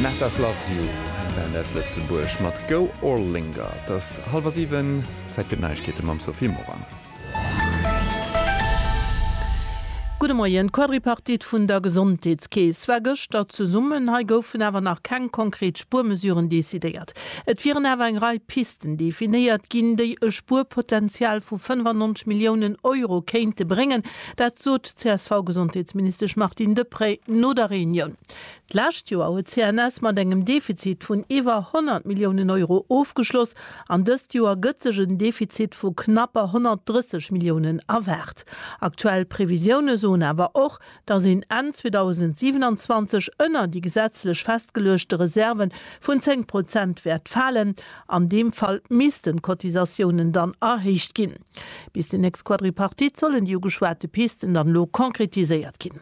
Natas Loves You, eng Band aus Lëtzebuerg mat Go or Linger. Et ass hallwer siwen, Zäit fir d'Neiegkeete mam Sophie Morang. Gudde Moien. D'Quadripartite vun der Gesondheetskeess war gëschter zesummen. Hei goufen awer nach keng konkret Spuermesuren decidéiert. Et wieren awer eng Rei Pisten definéiert ginn, déi e Spuerpotenzial vu 95 Milliounen Euro kéinte bréngen. Dat sot d'CSV-Gesondheetsministesch Martine Deprez no der Reunioun. D'lescht Joer huet d'CNS mat engem Defizit vun iwwer 100 Milliounen Euro ofgeschloss an dëst Joer gëtt sech en Defizit vu knapper 130 Milliounen erwaart. Aktuell Previsioune soen awer och, datt een Enn 2027 ënner déi gesetzlech festgeluechte Reserve vun 10 Prozent wäert falen. An deem Fall missten d'Cotisatiounen dann erhéicht ginn. Bis déi nächst Quadripartite sollen déi ugeschwate Pisten dann elo konkretiséiert ginn.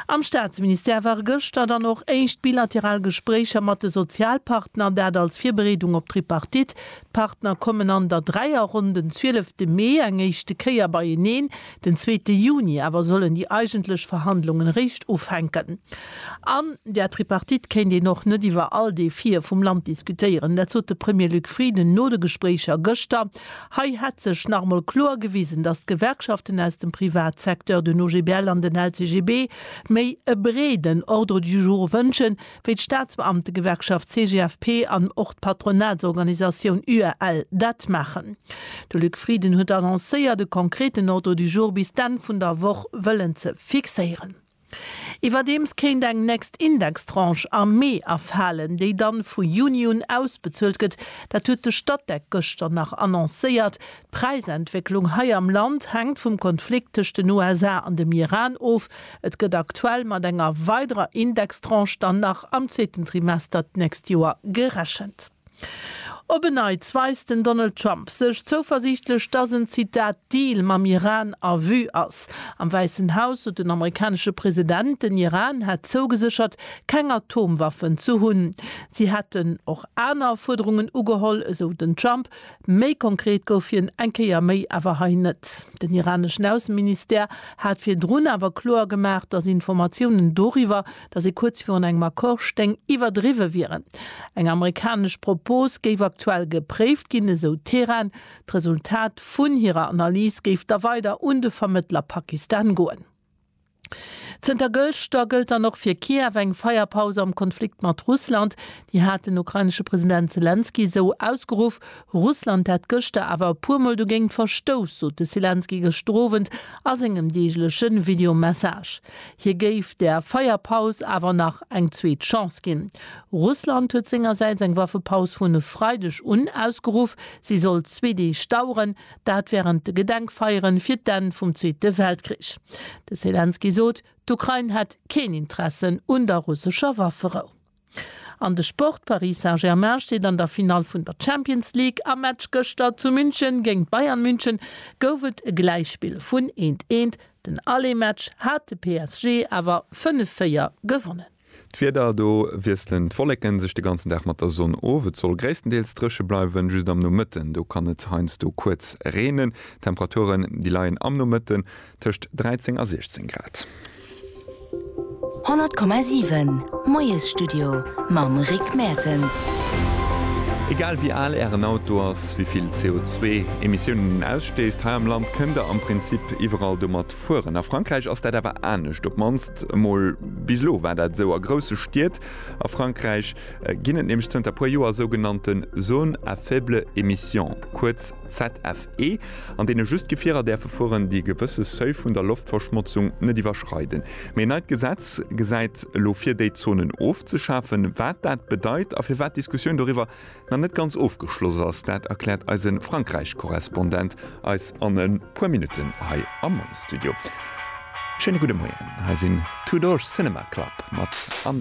Am Staatsministère ware gëschter dann och éischt bilateral Gespréicher mat de Sozialpartner, dat als Virbereedung op d'Tripartite. D'Partner kommen an der Dräierronn den 12 Mee eng éischte Kéier beieneen, Den zweete Juni awer sollen déi eigentlech Verhandlungen eréischt ufänken. An der Tripartite kéint een och net iwwer all Defie vum Land diskutéieren. Dat sot de Premier Luc Frieden no de Gespréicher gëschter. Hei hätt sech nach emol kloer gewisen, datt d'Gewerkschaften aus dem Privatsecteur, den OGBL an den LCGB, méi e breeden Ordre du jour wënschen, wéi d'Staatsbeamtegewerkschaft CGFP an och d'Patronatsorganisatioun UAL dat maachen. De Luc Frieden huet annoncéiert, e konkreten Ordre du jour bis d'Enn vun der Woch wëllen ze fixéieren. Iwwerdeems kéint eng nächst Indextranche am Mee erfalen, déi dann vu Juni un ausbezuelt gëtt. Dat huet de Statec gëschter nach annoncéiert. D'Präisentwécklung hei am Land hänkt vum Konflikt tëscht den USA an dem Iran of. Et gëtt aktuell mat enger weiderer Indextranche dann nach am zweeten Trimester d'nächst Joer gerechent. Op en Neits weist den Donald Trump sech zouversiichtlech, dass en, Zitat, Deal mam Iran a Vue ass. Am Wäissen Haus sot den amerikanesche President, den Iran hätt zougeséchert, keng Atomwaffen ze hunn. Si hätten och aner Fuerderungen ugeholl, esou den Trump, Méi konkret gouf hien eng Kéier méi awer hei net. Den iraneschen Ausseministère hat virdrun awer kloer gemaach, datt Informatiounen doriwwer, datt ee kuerz virun engem Accord stéing, iwwerdriwwe wieren. Eng amerikanesch Propos géif aktuell gepréift ginn, esou Teheran. D'Resultat vun hirer Analys géif da weider un de Vermëttler Pakistan goen. Zënter gëschter gëllt dann och fir Kiew eng Feierpaus am Konflikt mat Russland. Déi hat den ukrainesche President Selenskyj esou ausgeruff. Russland hätt gëschter awer e puer Mol dogéint verstouss, sot de Selenskyj gëschter Owend a sengem deegleche Video-Message. Hie géif der Feierpaus awer nach eng zweet Chance ginn. Russland huet sengersäits eng Waffepaus vun e Freideg un ausgeruff. Si soll zwee Deeg daueren. Dat wärend de Gedenkfeieren fir d'Enn vum Zweete Weltkrich. De Selenskyj sot, d'Ukrain hätt keen Interessen un der russescher Wafferou. An de Sport, Paris Saint-Germain steet an der Finall vun der Champions League. Am Match gëschter zu München géint Bayern München gouf et e Gläichspill vun eent, eent. Den Aller-Match hat de PSG awer 5, 4 gewonnen. D'Wieder, Do wiesselen d'Wolleken sech de ganzen Dag mat der Sonn of. Et soll gréisstendeels dréche bleiwen, just am Nomëtten do kann et heiansdo kuerz reenen. D'Temperaturen, déi leien am Nomëtten tëscht 13 a 16 Grad. 100,7 Moiesstudio mam Rick Mertens. Egal wéi al Ären Auto ass, wéi vill CO2 Emissiounen en ausstéisst, hei am Land kënnt der am Prinzip iwwerall domat Fueren. A Frankräich ass dat awer anescht, op d'mannst emol bis elo war dat esou. A grousse Stied a Frankräich ginn et nämlech zënter e puer Joer sougenannte Zones à faible émission, kuerz ZFE, an deene just Gefierer däerfe fueren, déi e gewësse Seuil vun der Loftverschmotzung net iwwerschreiden. Mee en neit Gesetz gesäit elo vir, déi Zonen ofzeschafen. Wat dat bedeit a firwat d'Diskussioun doriwwer nach net ganz ofgeschloss ass, dat erkläert eise Frankräich-Korrespondent eis an e puer Minutten hei am Moie-Studio. Schéine gudde Moien, hei sinn Two Door Cinema Club mat An.